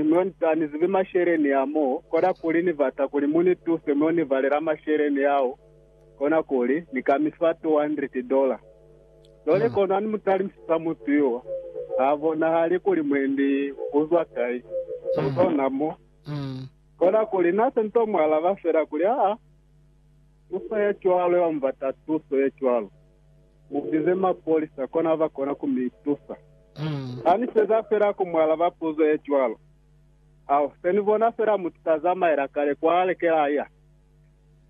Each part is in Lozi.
Mo ni ta, ni zibi masheleni a mo, kona kuli ni bata kuli mu ni tuse mo ni balela masheleni ao, kona kuli, ni ka mi fa 200 dola. Cwale kona ni mu talimisisa mutu yo, ha bonahali kuli mwendi u zwa kai, u zona mo. Kona kuli, Na se ni to mu alaba fela kuli, Aa, u sa ya cwalo, ya mu bata tuso ye cwalo. Mubize mapolisa kona ba kona ku mi tusa. Ha ni feza fela ku mu alaba puzo ye cwalo, ha se ni bona fela mutu sa zamaela kale kwa leke la ya.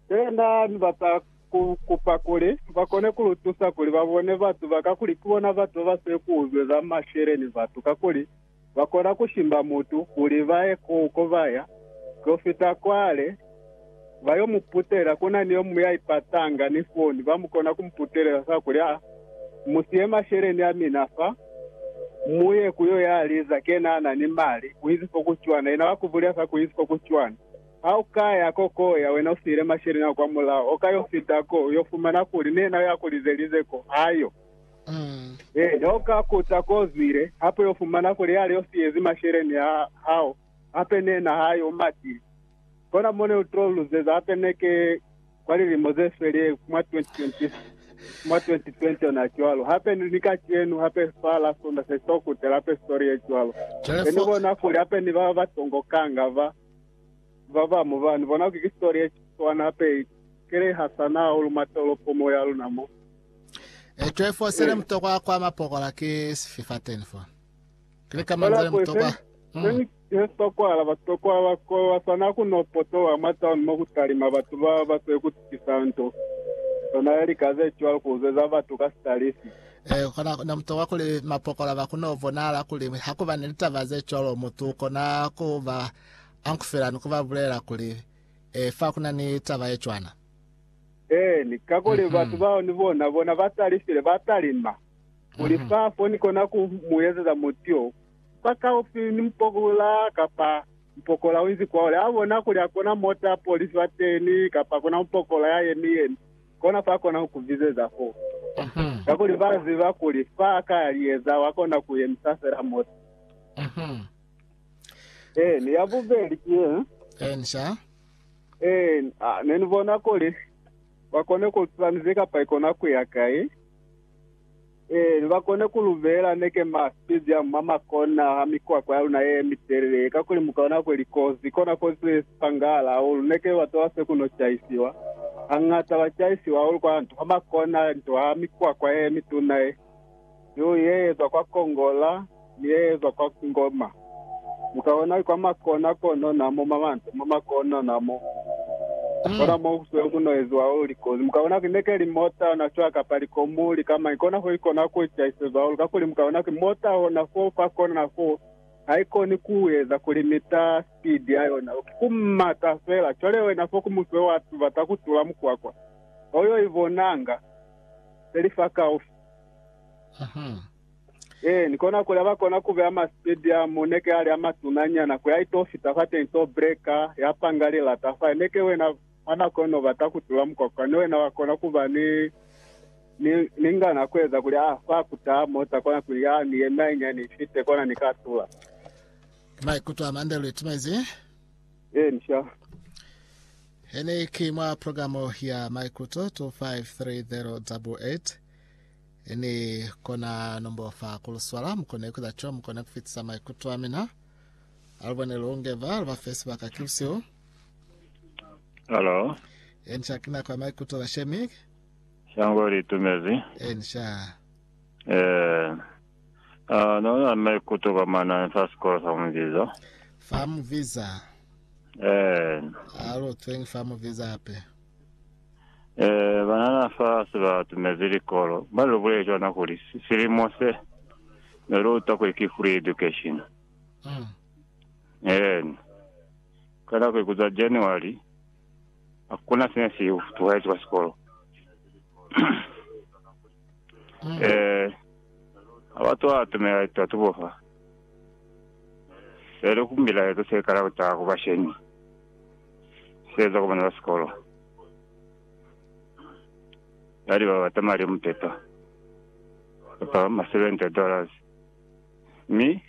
Se na ni bata ku kupa kuli ba kone ku lu tusa kuli ba bone batu ba ka kuli ki bona batu ba ba si ku uzweza masheleñi batu kakuli ba kona ku shimba mutu kuli ba ye ku uko ba ya to fita kwale ba yo mu putela. Ku na ni yo muñwi ya ipatanga ni foni, ba mu kona ku mu putelela fa kuli, Aa, mu siye masheleni a mina fa, mu ye ku yo ya liza ke na na ni mali, u izi fo ku cwana. Yena wa ku bulela fa kuli, U izi fo ku cwana. Ha u ka ya ko ko ya, wena u siyile masheleni ao kwamulaho, u ka yo fita ko, u yo fumana kuli ni yena yo ya ku lizelize ko, ha yo. Ee, noka kuta ko zwile, hape yo fumana kuli yale yo siyezi masheleni a hao, hape ne na hae u matile. Kona mo ne u to luzeza hape ne ke kwa lilimo ze sweli mwa 2020, mwa 2020 ona cwalo. Hape ni ni kacenu, hape fa la Sonda se to kutela hape story ye cwalo. Cwale Be ni fo, bona kuli hape ni ba batongo kanga ba, ba ba mu ba, ni bona kuli ki story ye swana hape i kelehasana hahulu mwa tolopo mo ya luna mo. Eco efo sele Eh. mutokwa kwa mapokola ki sifi fa teni fo? Kili ka Kola manzele kwese mutokwa. Mm. seni hesitokwala basitokwa ba sikolo basana ku no potoha mwa town mo ku talima batu ba ba se ku tukisa nto sona ya lika ze cwalo ku zweza batu ka sitalisi. Eh, kona ne mutokwa kuli mapokola ba ku no bonahala kuli ha ku ba ni litaba ze cwalo mutu u kona ku ba ankufela ni ku ba bulela kuli eh, fa ku na ni taba ye cwana. Eeni, kakuli batu bao ni bona, bona ba talifile, ba talima kuli fa fo ni kona ku mu ezeza muti yo fa kaufi ni mupokola kapa mupokola u inzi kwaole. A bona kuli hakuna mota ya polisi fateni kapa hakuna mupokola ya yemi yemi, kona fa kona ku ku bizeza fo, kakuli ba ziba kuli fa a ka ya liyeza wa kona ku yemisa fela mota. Eeni, ya bubeli ki ye. Ee, na, ne ni bona kuli ba kone ku lutula nize kapa ikona kuya kai. Ee, ne ba kone ku lubela neke ma speed ya mwa makona ha mikwakwa ya luna ye mitelele ye, kakuli mu kona kwe likozi, kona kozi ze si pangahala hahulu. Neke ba tola se ku no caisiwa. Hañata ba caisiwa hahulu kwa nto ha makona, nto ha mikwakwa ye mituna ye. Yo yeezwa kwa kongola ni yeezwa kwa ngoma. Mukaona kwa makona kono na mo mamante, mo makona na mo. Kona mo kusweli ku no eziwa hahulu likozi. Mukaona ki neke li mota na cwa kapa likomu lika mañi, kona fo ikona ku itahisezwa hahulu. Kakuli mukaona ki mota hona fo fa kona na fo, haikoni ku eza ku limita speed ya yona. Ku mata fela. Cwale wena fo ku muswe wa tubata ku tula mukwakwa. Ho yo ibonanga. peli fakaufi. Ee, ni kona kuli aba kona kubeya masitediamu, neke ali amatuna nyana, kuya ito fita fateni to breka, ya panga lilata fa. Neke wena mwa nako ino ubata kutula mukwakwa, ni wena wa kona kuba ni, ni, ni ngana kueza kuli a fa kutaha mota kona kuli ya ni yeme hainyani ifite kona ni ka tula. Maikuto a mande luli timezi. Ensha. Hene ki mwa programo ya maikuto 2530 double 8 ni kona nombo fa kuluswala mukone kuza cho mukone kufitisa maikuto a mina alubone lungeva luba fe sibaka kilusiu Hello. ensha kina kwa maikuto la shemi Shango litumezi. ensha Eh, Neo na ni maikuto ka manani fa sikolo sa Muviza. Fa Muviza? Eena. A lu tswengi fa Muviza hape? Ee, banana fa si ba tumezi likolo ba lu buleli cwana kuli silimo se ne lu utwa kuli ki free education. Eena. Ka nako ye ku zwa January, hakuna sine si tuhezi kwa sikolo. Mm. Ee, ha ba to atumela litatubo fa, se li ku mbilaezo se kala ku taha ku bashemi, se eza ku bana ba sikolo, ya liba bata mali a muteto, kapa ma 70 dollars, mi